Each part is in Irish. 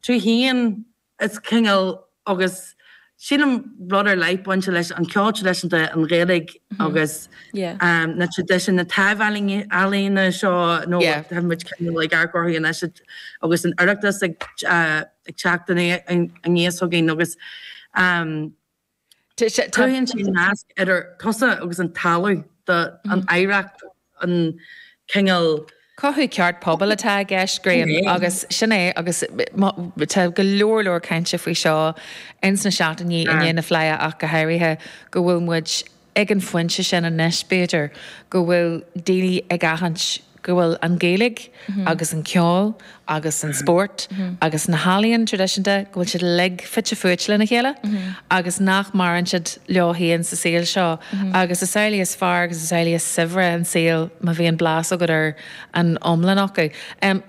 tú féin, is cineál, agus sílim, rud ar leith ag baint leis an cheol traidisiúnta, an Ghaeilge agus na traidisiúin, na taibh-ealaíona seo nó tá muid cineál ag amharc orthu anois agus an tOireachtas ag teacht aníos chugainn agus. Cruthaíonn sé nasc idir tusa agus an talamh, do, an oidhreacht, an cineál. Cothú ceart, pobal atá i gceist, Grian, agus sin é agus tá go leor leor cainte faoi seo ins na seachtainí i ndiaidh na Fleidhe ach go háirithe, go bhfuil muid, Ag an phointe sin anois, b'fhéidir, go bhfuil daoine ag aithint go bhfuil an Ghaeilge agus an ceol agus an spórt agus na healaíona traidisiúnta, go bhfuil siad uilig fite fuaite lena chéile agus nach maireann siad leo féin sa saol seo. Agus is amhlaidh is fearr agus is amhlaidh is saibhre an saol má bhíonn blas agat ar an iomlán acu.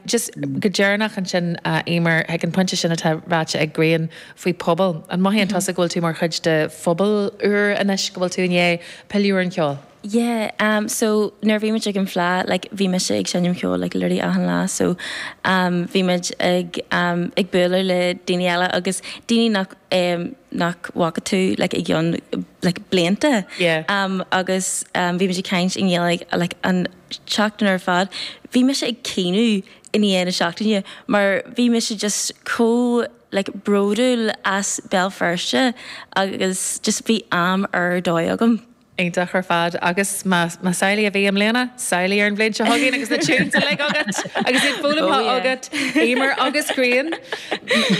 Just go deireanach ansin, a Éimear, ag an phointe sin atá ráite ag Grian, faoi phobal. An mothaíonn tusa go bhfuil tú mar chuid de phobal úr anois, go bhfuil tú i ndiaidh pilleadh ar an cheol? Yeah, em so nuair a bhí muid ag an Fleadh like bhí mise ag seinm ceoil like literally achan lá so em bhí muid ag em ag bualadh le daoine eile agus daoine nach em nach bhfaca tú like le like blianta Yeah. em agus em bhí muid ag caint i nGaeilge like an tseachtain ar fad. Bhí mise ag caoineadh i ndiaidh na seachtaine mar bhí mise just chomh like bródúil as Béal Feirste agus just bhí am ar dóigh agam. Iontach ar fad agus más más amhlaidh a bhí i mbliana, samhlaigh ar an bhliain seo chugainn agus na tunes uilig agat agus iad foghlamtha agat, Éimear agus Grian,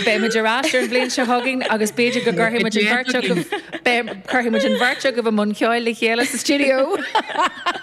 beidh muid ar ais ar an bhliain seo chugainn agus b'fhéidir go gcuirfidh muid an bheirt agaibh, cuirfidh muid an bheirt agaibh i mbun ceoil le chéile sa stiúideo!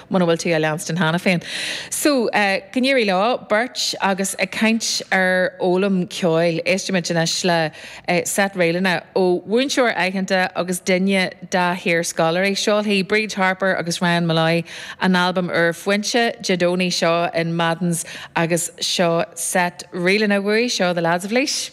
muna bhfuil tú á leanstan cheana féin. So, go n-éirí leo beirt. Agus ag caint ar fhoghlaim ceoil, éistfimid anois le seit ríleanna ó mhúinteoir aitheanta agus duine dá hiarscoláirí. Seolfaidh Bríd Harper agus Ryan Molloy a n-albam úr Foinse Dé Domhnaigh seo in Madden's agus seo seit ríleanna uaidh. Seo The Lads of Laois.